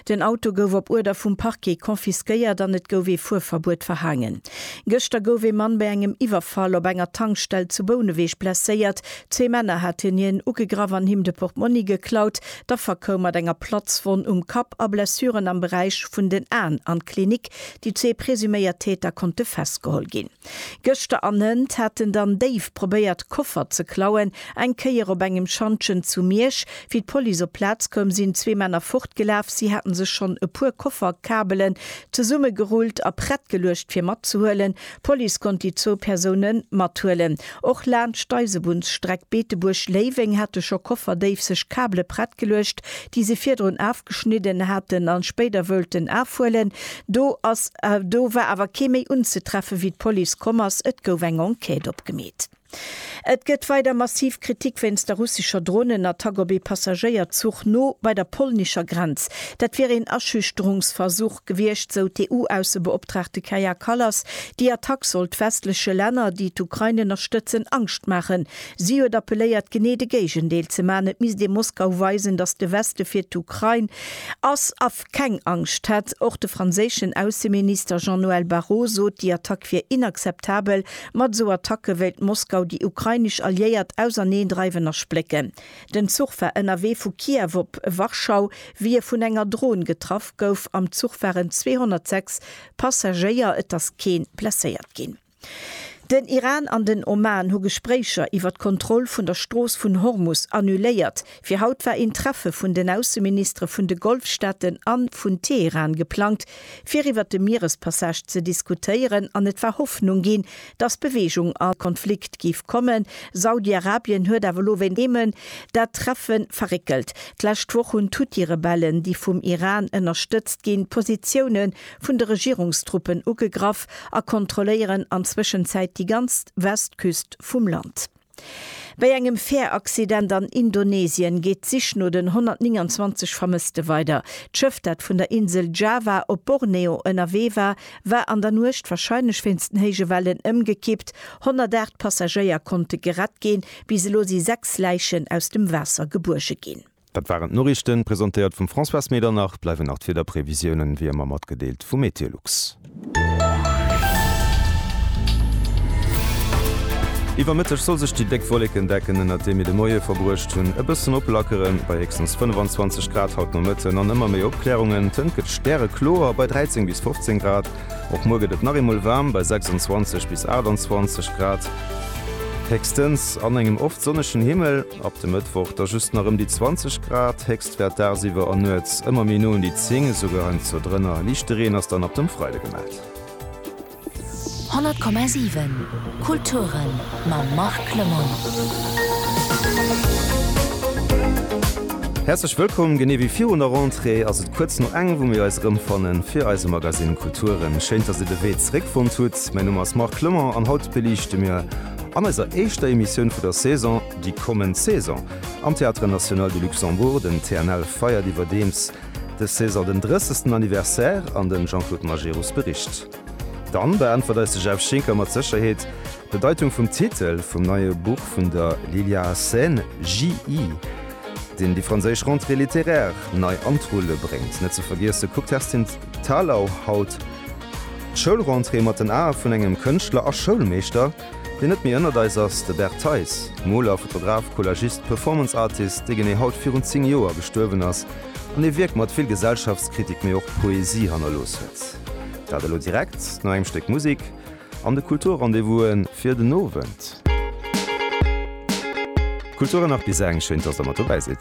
Den Auto gouf op Uerder vum Parquet confisquéiert an et gouf ee Fuerverbuet verhaangen. Gëschter gouf ee Mann bei engem Iwwerfall op enger Tankstell zu Bouneweg blesséiert. Zwee Männer haten hien ugegraff an him de Portmonni geklaut. D'Affer koum mat enger Platzwonn um Kapp a Blessuren am Beräich vun den Aen an d'Klinik. Déi zwee presuméiert Täter konnte festgeholl ginn. Gëschter an hënt haten dann déif probéiert Koffer ze klauen. Eng Kéier op engem Schantjen zu Miersch, wéi d'Police op d'Plaz koum, sinn zwee Männer fortgelaf. Si haten sech schonn e puer Kofferkabelen zesummegerullt a prett geluecht fir matzehuelen. D'Police konnt déi zwou Persoune mathuelen. Och laanscht d'Eisebunnsstreck Beetebuerg, Léiweng hate scho Kofferdéif sech Kabele prett geluecht, déi se virdrun afgeschnidden haten a spéider woulten afhuelen. Do ass, do war awer kee méi unzetreffen, wéi d'Police komm ass. Et gouf eng Enquête opgemeet. Et gëtt weider massiv Kritik wéinst der russescher Dronenattack op ee Passagéierzuch no bei der polnescher Grenz. Dat wier een Aschüchterungsversuch gewiescht, sou d'EU-Aussebeoptraagte Kaja Kallas. Déi Attack sollt westleche Länner, déi d'Ukrain ënnerstëtzen, Angscht maachen. Si huet appelléiert, genee de Géigendeel ze maachen. Et misst ee Moskau weisen, datt de Weste fir d'Ukrain ass. keng Angscht hätt. Och de franséischen Ausseminister Jean-Noël Barrot sot, déi Attack wier inakzeptabel. Mat esou Attacke wéilt Moskau déi ukrainesch Alliéiert auserneendreiwen a splécken. Den Zuch war ënnerwee vu Kiew op Warschau, wéi e vun enger Dron getraff gouf. Am Zuch waren 206 Passagéier, et ass kee blesséiert ginn. Den Iran an den Oman hu Gespréicher iwwer d'Kontroll vun der Strooss vun Hormus annuléiert. Fir haut war een Treffe vun den Ausseministere vun de Golfstaaten a vun Teheran geplangt, fir iwwer de Mierespassage ze diskutéieren an et war Hoffnung ginn, datt Beweegung an de Konflikt géif kommen. Saudi-Arabien huet awer elo wéint Jemen dat Treffe verréckelt. D'lescht Woch hunn d'Huthi-Rebellen, déi vum Iran ënnerstëtzt ginn, d'Positioune vun de Regierungstruppen ugegraff a kontrolléieren an Zwëschenzäit déi ganz Westküst vum Land. Bei engem Färaccident an Indonesien geet d'Sich no den 129 Vermësste weider. D'Schëff, dat vun der Insel Java op Borneo ënnerwee war, war an der Nuecht, warscheinlech wéinst den héije Wellen, ëmgekippt. 108 Passagéier konnte gerett ginn. Bis elo si sechs Läichen aus dem Waasser gebuerge ginn. Dat waren d'Noriichten, presentéiert vum Françoise Medernach. Bleiwen nach d'Wiederprevisiounen, wéi ëmmer matgedeelt vu Meteolux. Iwwer Mëtteg soll sech déi déck Wollekendecken, ënnert deem mir de Moie verbruecht hunn, e bëssen oplackeren. Bei héchstens 25 Grad haut Nomëtten an ëmmer méi Opklärungen. D'Hënt gëtt stärekloer bei 13 bis 15 Grad. Och muer gëtt et nach eemol waarm bei 26 bis 28 Grad, héchstens an engem oft sonnegen Himmel. Ab de Mëttwoch da just nach ëm déi 20 Grad, Héchstwäert dagsiwwer an nuets ëmmer méi no un déi 10, esouguer heiansdo drënner. Liichte Reen ass dann ab dem Freide gemellt. 100,7 Kulturen mam Marc Lemoine. Häerzlech wëllkomm! Genee wéi virun der Rentrée ass et kuerz no eng, wou mir eis erëmfannen fir eise Magazine Kulturen. Schéin, dass dir de Wee zréckfonnt hutt. Mäi Numm ass Marc Lemoine an haut beliichte mir, An eiser éischter Emissioun vu der Saison, déi kommend Saison am Théâtre National de Luxembourg. Den TNL feiert iwwerdeems des Saison den 30. Anniversaire an den Jean-Claude Majerus bericht dann. Beäntwert eis de Jeff Schinker mat Sécherheet d'Bedeitung vum Titel vum neie Buch vun der Lilia Hassen, JI, deen déi franséisch Rentrée littéraire nei an d'Rulle bréngt. Net ze vergiesse kuckt d'Kerstin Thalau haut. D'Schoulrentrée mat den Ae vun engem Kënschtler a Schoulmeeschter, deen net méi ënnert eis ass, de Bert Theis. Moler, Fotograf, Collagist, Performance Artist, dee genee haut virun 10 Joer gestuerwen ass an ee Wierk mat vill Gesellschaftskritik, mee och Poesie hannerlooss huet. Dat elo direkt no engem Stéck Musik an de Kulturrendez-vouse fir den Owend. Kultur an nach bis eng schéin, dass der mat dobäi sidd.